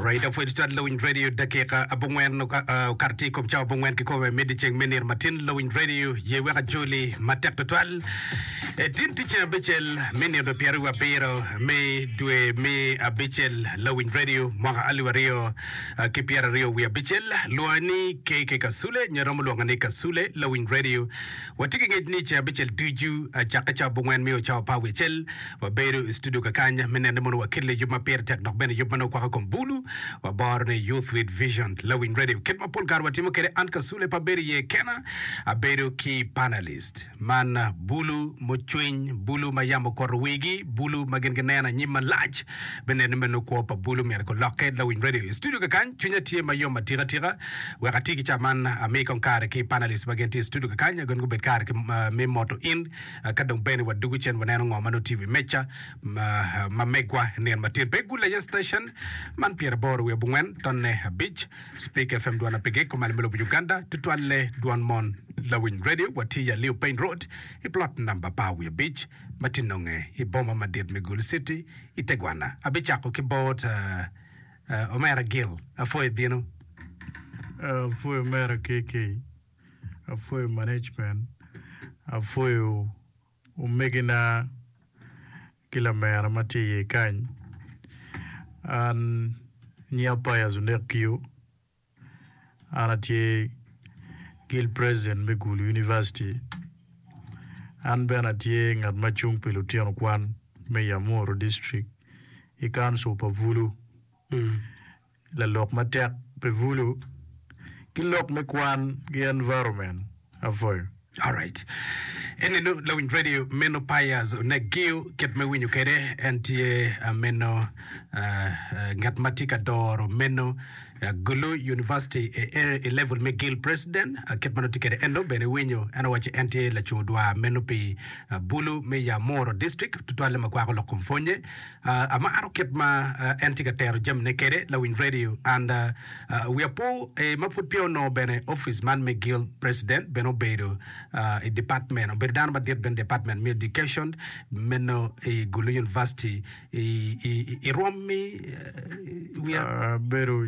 Raida pwec tat lawiny radio dakika abongwen okato tye i kom cawa abongwen ki kome medi ceng me nino matin lawiny radio ye wek ajoli matek tutwal etin ti ceng abicel me nino pyeri wa biro me dwe me abicel lawiny radio mwaka alip aryo ki pyeri aryo wi abicel lwonga ni KK Kasule nyo romo lwonga ni Kasule lawiny radio watye ki ngec ni ceng abicel ducu acakke cawa abongwen mio cawa pa wicel Wabedo i studio kakany me nene mono wakelli yub ma pire tek dok bene yub ma nongo kwako kom bulu. Waboro ni Youth with Vision, Lawiny Radio, kit ma pol kare watimo kwede an Kasule pe abedo iye kena, abedo ki panelist. Man bulu mucwiny, bulu ma yam okuto wigi, bulu ma gin gineno anyim malac. Me nene me nongo kwo pa bulu myero gulokke. Lawiny Radio i studio kakany, cwinya tye ma yom atika tika. Wek ati ki ca man, ami kong kare ki panelist ma gin tye i studio kakany, gin gubed kare ki, ah, me moto in. Ka dong bene wadwogo cen waneno ngo ma nongo tye i wi meca ma megwa nino matin pe igul aye station man pyera aboro wiye abongwen tonne abic Speak FM dwan apege komane me lobo Uganda tutwalle dwan mon lawiny radio watye i Aliu Payne Road i plot namba apar wiye abic ma tye nonge i boma madit me Gulu City i tegwana abicako ki bot Omera Gil apwoyo ibino. Apwoyo omera KK. apwoyo management, apwoyo omegina ki lamera ma tye iye kany. An nyinga Pius Onek Kiyo, an atye guild president me Gulu University. An bene atye ngat ma cung pi lutino kwan me Yamuru district i council pa Bulu. lalok matek pi Vulu ki lok me kwan ki environment afoyo. Alright. Eni nu lawiny radio meno payas onek giu kit me winyo kede en tye ah, meno ah, ah, ngat ma tye ka doro meno ah, Gulu University e, e, e level me Gil President ah, kit ma nongo tye kede en dong bene winyo en owaci en tye laco dwar meno pi ah, Bulu me Yamoro District tutwalle ma kwako lok kom pwonye Amaro kit ma en tye ka tero jamine kwede lawiny radio and wiya po ee ma pud peya onongo bene office man me guild president bene obedo i department meno obedo dano madit bene i department me education meno i Gulu University i rwom mi wiya bedo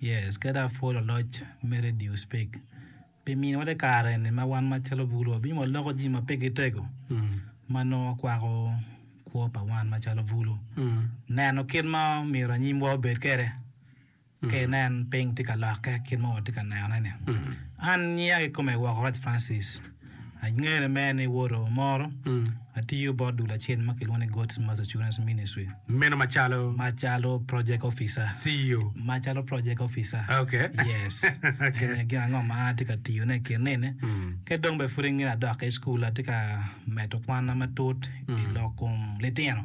Yes, kadi apwol aloc me radio spek pi mini wate kare ni ma wan ma calo bulu wabinyo wa loko ji ma pe gi tego ma nongo kwako kwo pa wan ma calo bulu neno kit ma omyero anyim wa obed kede ke nen ping ti ka lokke kit ma wati ka neno ne ni. An nyiya ki kome woko Raj Francis. Angene mere ni woto moro atiyo bot dul acel ma kilwongo ni God's Mass Assurance Ministry. Meno macalo? Macalo project officer. CEO? Macalo project officer. Okay. Yes. Okay. Eni gin ango ma atye ka tiyone i kin nene. Ki dong bene pud i nge adok ki i cukul, atye ka medo kwanna matut i lok kom litino.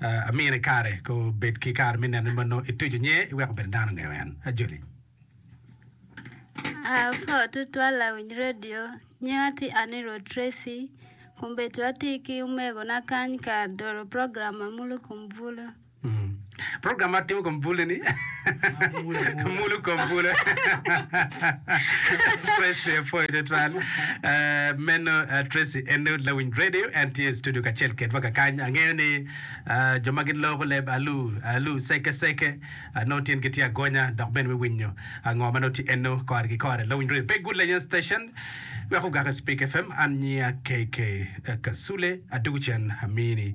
Amine i kare ko bed ki kare me nene ma nongo ituco nye iweko bene dano ongeyo en. Ajoli. Apor tutwal awinyo radio, nyinga tye Anirudh Tracy, kombedo atye ki omegona kany ka dolo program ma mulo kom bulu. Program ma timo kom bulu ni. Mulu kom bwolo. Tracy apwoyo tutwal. Eh, meno eh, Tracy en lawiny radio, en tye i studio kacel kedwa kakany. Angeyo ni ah, jo ma giloko leb alu alu seke seke ah, nongo tyengi tye agonya dok bene me winyo ah, ngo ma nongo tye enno kore ki kore. Lawiny radio pe good lenya station wek ogak i Speak FM. An nyiya KK Kasule, adwogo cen amini.